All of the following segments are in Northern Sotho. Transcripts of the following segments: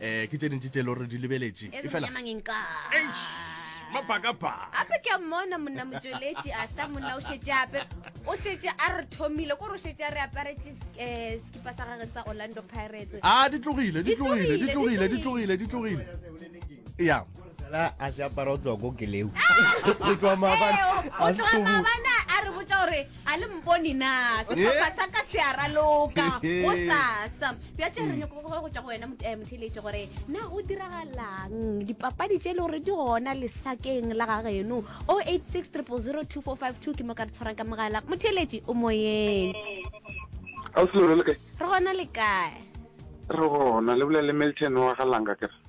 eh ke tse dintši tse e le gore di lebeletše e fela mapakapaka gape ke a mmona monna motšweletši a sa monna o šetše ape o šetše a re thomile kore o šetše a re aparetše um sekipa sa gage sa orlando pirates a ditlogile ditlogile ditlogile ditlogile ditlogile ya Sala a se apara o tloa ko keleu. O tloa maabana. O tloa maabana a re botsa gore a le mpone na setlhopha sa ka se a raloka go sasa. Bja tše re nyoko go tšwa go wena motheletše gore na o diragalang dipapadi tše e le gore di gona lesakeng la ga geno 086 000 2452 ke mo ka re tshwarang ka mogala motheletše o moyeng. Re gona le kae? Re gona le bolela le Milton wa ga Langa kere.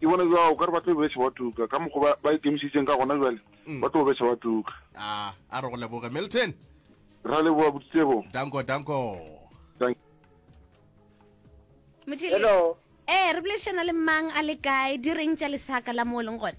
Ke bona bjalo, o ka re ba tlo besa wa tuka, ka mokgwa ba, ba ikemišeditseng ka gona bjale, mm. ba tlo besa wa tuka. A, a re go leboge, Milton. Ra leboga, Boditsebo. Danko, danko. Danko. Hello. Eh, re boledišana le mang a le kae, di reng tša lesaka la mo o leng gone?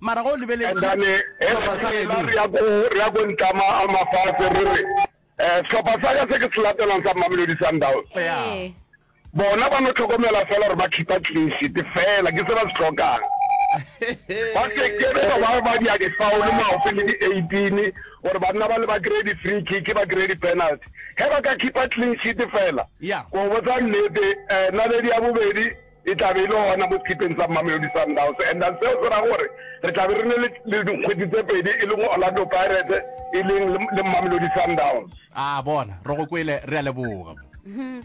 Mara ge o lebeletše sehlopha sa geno. Re ya ko, re ya ko Ntlama a Mafase, re re, Eh, sehlopha sa ka se ke se latelang sa Mamelodi Sundowns. Ee. Bona ba no tlhokomela fela gore ba khipa clean sheet fela, ke se ba se tlhokang. Ba se ke be ba ba dia difaolo maope le di eighteen gore ba nna ba le ba kry-e di-free kick, ba kry-e di-penalty. Ge ba ka khipa clean sheet fela, Yeah. ke go botsa nnete, eh, naledi ya bobedi, E tla be e le gona mo sekipeng sa Mamelodi Sundowns and then seo se ra gore re tla be re ne le dikgwedi tse pedi e le go Orlando Pirates e leng le Mamelodi Sundowns. A bona, re go kwele, re a leboga.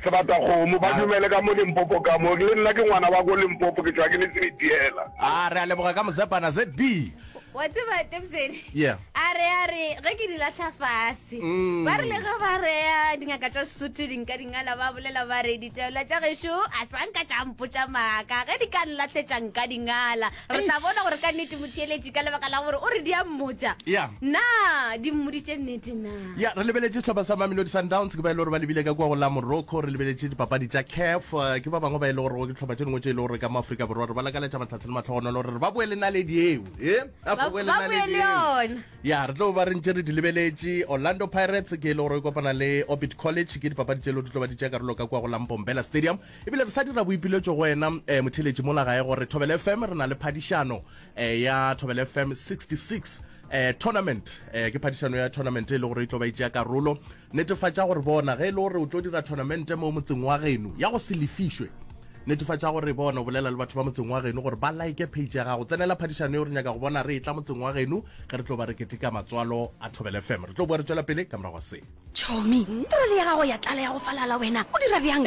Sebatakgomo, ba dumele ka mo Limpopo ka mo. Le nna ke ngwana wa ko Limpopo, ke tšwa ke le Sebitiela. A re a leboga ka Mozepana, ZB. wa tseba tebsen yeah. a re a re ge ke di latlha fase mm. ba rile ge ba reya dingaka tša sesotho dinka dingala ba bolela ba re ditaola tša gešo a sanka tša mpotša maaka ge di ka nlatletša nka dingala re tla bona gore ka nnete motheeletši ka lebaka la gore o re di a mmotša na di mmoditše nnete na Ya, re lebeletše sehlopha sa Mamelodi Sundowns, ke ba e le gore ba lebile ka kua go la Morocco. Re lebeletše dipapadi tša CAF, eh, ke ba bangwe ba e le gore go ke dihlopha tše dingwe tše e le gore ka mo Afrika Borwa re ba lakaletša matlhatse le matlhogonolo gore ba boele naledi eo e ba Ba- boele ba naledi boele eo. yona. ya re tlo ba re ntše re di lebeletše orlando pirates ke e le gore e kopana le orbit college ke dipapadi tše e le gore di tlo ba di tšea karolo ka kua go lampombela stadium ebile re sa dira boipiletšo go wena um motheletši mola gae gore thobele fm re na le phadišano um ya thobele fm 66 eh, tournament eh, ke phadišano ya tournament e le gore e tlo ba itšea karolo netefatša gore bona ge e le gore o tlo dira tournamente mo motseng wa geno ya go se lefišwe netefatša gore bona o bolela le batho ba motseng wa geno gore ba like page ya gago tsenela phadišano e re nyaka go bona re e tla motseng wa geno ge re tlo ba re keteka matswalo a thobele fm re tlo boa re tswela pele ka morago se Chomi, trole ya gago ya tlala ya go falala, wena o dira bjang?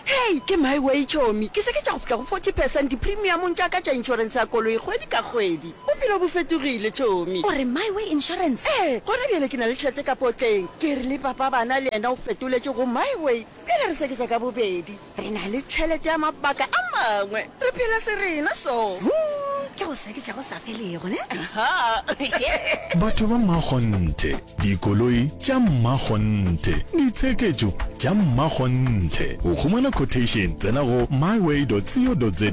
Hei, ke my way Chomi, ke seketša go fihla go forty percent dipremiumong tša ka tša insurance ya koloi kgwedi ka kgwedi. Bophelo bo fetogile Chomi. O re my way insurance? Ee, gona bjale ke na le tšhelete ka potleng. Ke rile papa bana le yena o fetoletše go my way. Bjale re seketša ka bobedi. Re na le tšhelete ya mabaka a mangwe. Re phela serena so. Huu, ke go seketša go sa felego, ne? Ahaa. Batho ba mmakgonthe, dikoloi tša mmakgonthe, ditsheketšo tša mmakgonthe. Go humana quotation, tsena go myway.co.za.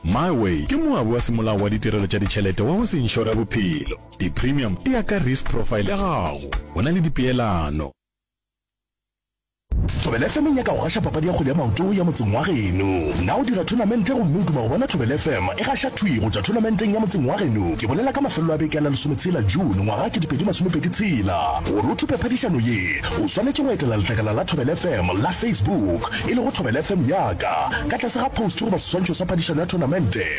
Myway ke moabi wa semolao wa ditirelo tša ditšhelete wa go se inšore bophelo. Di-premium di ya ka risk profile ya gago. Go na le dipeelano. Thobela FM e nyaka go gaša papadi ya kgwele ya maoto ya motseng wa geno. Na o dira thonamente gomme o duma go bona Thobela FM e gaša thwi go tšwa thonamenteng ya motseng wa geno? Ke bolela ka mafelelo a beke a la lesometshela June ngwaga ke dipedi masomepedi tshela. Gore o thupe phadišano ye, o swanetše go etela letlakala la Thobela FM la Facebook, e lego Thobela FM Yaka, ka tlase ga post goba seswantšho sa phadišano ya thonamente.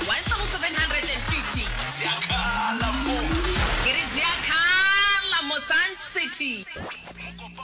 1750. Ziakhala mo. Ke re ziakhala mo Sun City.